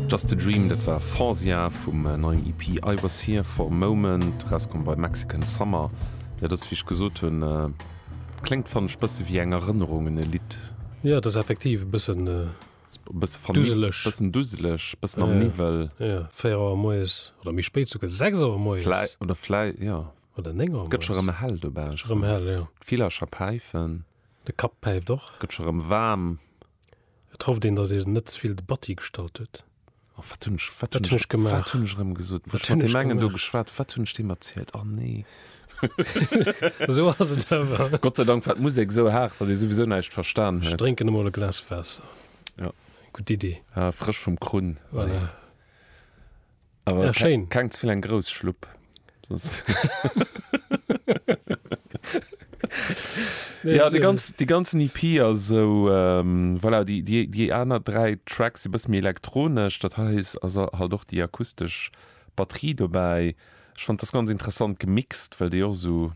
Just a Dream, dat war Fanzia vum neien EP I Was Here For A Moment, erauskomm bei Mexican Summer. Jo, dass, wéi ech gesot hunn, kléngt, fannen ech, bësse wéi eng Erënnerungen-Lidd. Jo, et ass effektiv e bëssen duseleg. Bëssen duseleg, bëssen am Niwwel. Jo, véier Auer moies, oder méi spéit souguer, sechs Auer moies. Vläicht, oder vläicht, jo. Oder néng Auer moies. Gëtt scho rëm hell dobaussen. Scho rëm hell, jo. D'Villercher päifen. De Kapp päift och. Gëtt scho rëm waarm. Et hofft een, dass een net ze vill Debatti gestallt huet. Oh, wat hunn ech, wat hunn ech gemaach? Wat hunn ech erëm gesot? Wat hunn ech gemaach? Wat hunn ech mat deem engen do geschwat? Wat hunn ech deem erzielt? Oh, nee. Esou ass et awer. Gott sei Dank war d'Musek esou haart, datt ee souwisou näischt verstan huet. Ech drénken emol e Glas Waasser. Ja. Gutt Idee. Ah, frësch vum Krunn. Voilà. Aber ja, schön. Keng zu vill eng grouss Schlupp. nee, ja, die, ganz, die ganzen EP as so ähm, voilà, die, die, die aner drei Tracks si bëss mir elektronesch, dat heis as halt doch die akustesch Batterie dobäi. Ech fand das ganz interessant gemixt, well déi och so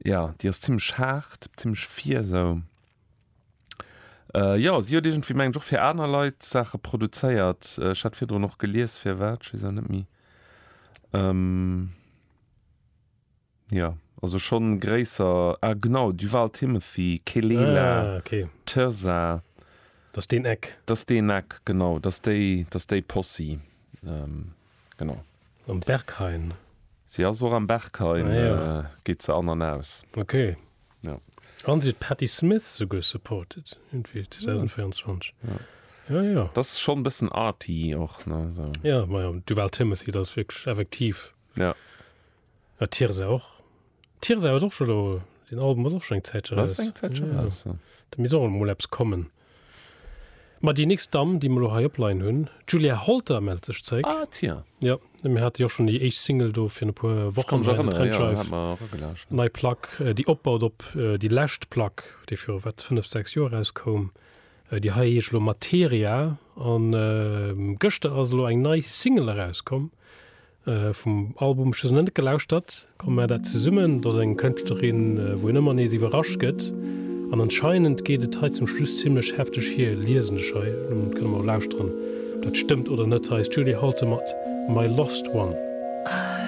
ja, Dir ass ziemlech hart, ziemlech fier sou. Äh jo, si huet iergendwéi, mengen ech, och fir aner Leit Saache produzéiert. Ech hat virdrun och gelies, firwat, ech weess et net méi. Ehm, jo, also schonn gréisser, ah genau, Duval Timothy, Kelela, Ah, okay. Thirza, Dass deen Eck. dass deen Eck, genau, dass déi, dass déi Possi, ehm. Genau. Am Berghain. Si ass och am Berghain, geet se an an aus. Ok. Jo. An si huet d'Patti Smith souguer supported iergendwéi 2024. Jo, jo. Dat ass schonn e bëssen arty och, ne, sou. Jo, majo, Duval Timothy, dat ass wierklech effektiv. Jo. Ja, Tirza och. Tirza huet och scho lo, den Album ass och schon eng Zäitche raus. Eng Zäitche ja. raus. Ja. Da misst och emol eppes kommen. Ma déi nächst Damm, déi mer lo hei opleien hunn, d'Julia Holter mellt sech zréck. Ah, tiens. Ja, mir hate jo schon déi éischt Single do fir e puer Wochen bei der Trendscheiw. Ja, mer erëgelauscht. Nei Plack, déi opbaut op déi lescht Plack, déi viru wat fënnef, sechs Joer erauskoum. Déi hei heescht lo Materia. An gëschter ass elo eng nei Single erauskomm. Vum Album ech hues nach net gelauschtert, komm maach dat zesummen. Et ass eng Kënschtlerin wou een ëmmer nees iwwerrascht gëtt an anscheinend geet et hei zum Schluss zimmlech hefteg hier, liesen ech hei. Dann kënne mer lauschteren ob dat stëmmt oder net. Hei ass d'Julie Holter mat My Lost One.